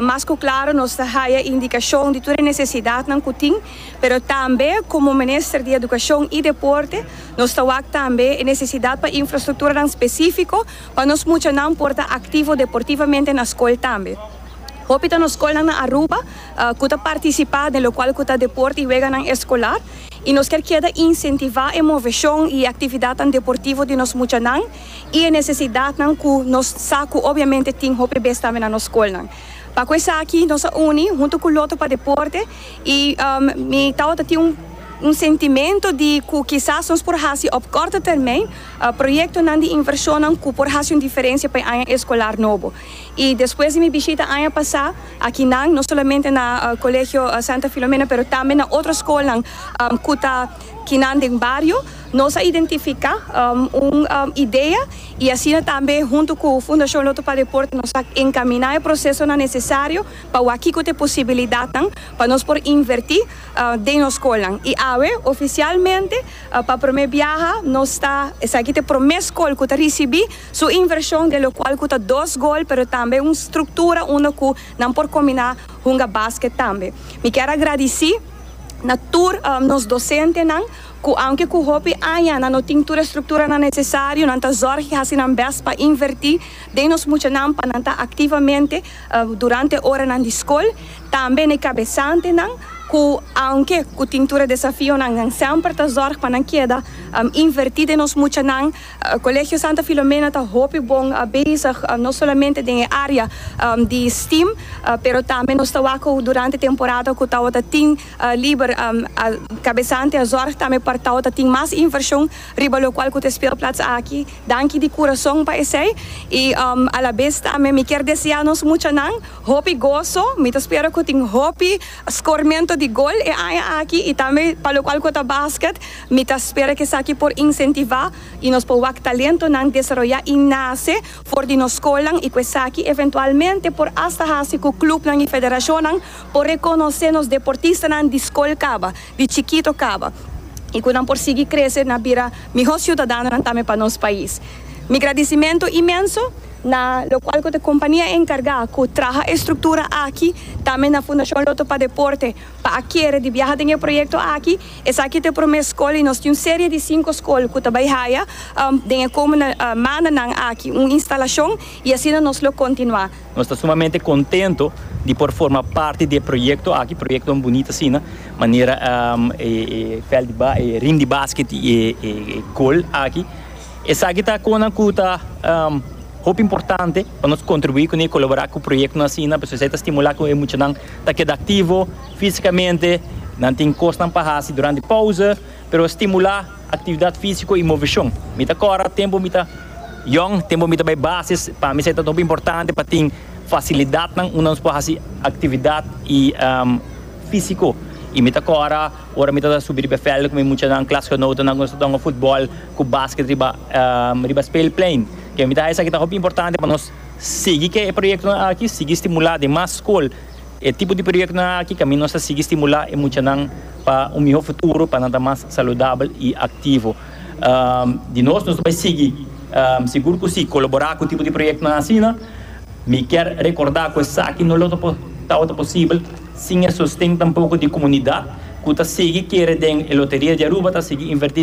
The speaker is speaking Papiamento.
Mas ku klaro nos ta haya indikashon di tur e nesesidatnan ku tin, pero tambe komo Minister di Edukashon i Deporte nos ta wak tambe e nesesidat pa infrastrukturanan spesifiko pa nos muchanan por ta aktivo deportivamente na skol tambe. Hopi ta nos skolnan na Aruba ku ta partisipá den lokual ku ta deporte i weganan eskolar i nos kier keda insentivá e moveshon i e aktividatnan deportivo di nos muchanan i e nesesidatnan ku nos sa ku obiamente tin hopi bes tambe na nos skolnan. Pa ku esaki nos a uni huntu ku lotu pa deporte i mi tabata tin un un sentimento di ku kisas nos por hasi op korto termijn proyektonan di invershonnan ku por hasi un diferensia pa e aña eskolar nobo. I despues di mi bishita aña pasá aki nan, no solamente na Colegio Santa Filomena pero tambe na otro skolnan ku ta kinan den bario, Nos a identifica un idea y asina tambe hunto cu Fundacion Lotto pa Deporte nos a encamina e procesonan necesario pa wak kico ta e posibilidadnan pa nos por inverti den nos scolnan. Y awe oficialmente pa prome biaha nos ta esaki ta e prome scol cu ta ricibi su inversion de locual cu ta dos gol pero tambe un structura unda cu nan por combina hunga basket tambe. Mi kier a gradici na tur nos docentenan Cu aunke cu hopi aña nan no tin tur e structuranan necesario, nan ta zorg y haci nan best pa inverti den nos muchanan pa nan ta activamente durante oranan di scol. Tambe n'e cabesantenan cu aunke cu tin tur e desafionan, nan semper ta zorg pa nan keda inverti den nos muchanan. Colegio Santa Filomena ta hopi bon bezig no solamente den e area di steam, pero tambe nos ta wak cu durante temporada cu tawata tin Liber a kabesante a zorg tambe pa Tao ta tin mas invershon riba lokual ku ta e spelplats aki. Danki di kurason pa esei i alabes tambe mi kier deseá nos muchanan hopi goso. Mi ta spera ku tin hopi skormento di gol e aña aki i tambe pa lokual ku ta basket mi ta spera ku esaki por insentivá i nos por wak talentonan desaroyá i nase for di nos skolnan i ku esaki eventualmente por asta hasi ku klupnan i federashonnan Por rekonosé nos deportistanan di skol kaba, di chikito kaba i ku nan por sigui krese na bira mihó siudadanonan tambe pa nos pais. Mi gradisimentu imenso na lokual ku ta kompania enkargá ku traha e struktura aki, tambe na Fundashon Lotto pa Deporte pa a kere di biaha den e proyekto aki. Esaki ta e promé skol i nos tin un serie di sinku skol ku ta bai haya den e komende mandanan aki un instalashon i asina nos lo kontinuá. Nos ta sumamente contento di por forma parti di e proyecto aki, proyectonan bunito asina, manera e veld di ba, e ring di basket y e goal aki. Esaki ta conan cu ta hopi importante pa nos contribui cun'e y colabora cu proyectonan asina, pasobra esaki ta stimula cu e muchanan ta keda activo fisicamente, nan tin cosnan pa haci durante pausa. Pero stimulá aktividat físiko i moveshon. Mi ta kòrda tempu mi ta yòn, tempu mi ta bai basis, pa mi esei ta hopi importante pa tin fasilidatnan unda nos por hasi aktividat i físiko. I mi ta kòrda ora mi tabata subi riba e vèlden ku mi muchanan, klasgenotennan, ku nos ta tonga futbòl ku basket riba riba speelplein. Ke mi ta haña esaki ta hopi importante pa nos sigui ke proyektonan aki, sigui stimulá den mas skol E tipo di proyektonan aki ta nos a sigui stimulá e muchanan pa un mihó futuro, pa nan ta mas saludabel i aktivo. Di nos, nos ta bai sigui? Sigur ku sí, kolaborá ku e tipo di proyektonan asina. Mi kier rekordá ku esaki no lo tabata posibel sin e sosten tampoko di komunidat ku ta sigui kere den e loteria di Aruba, ta sigui invertí.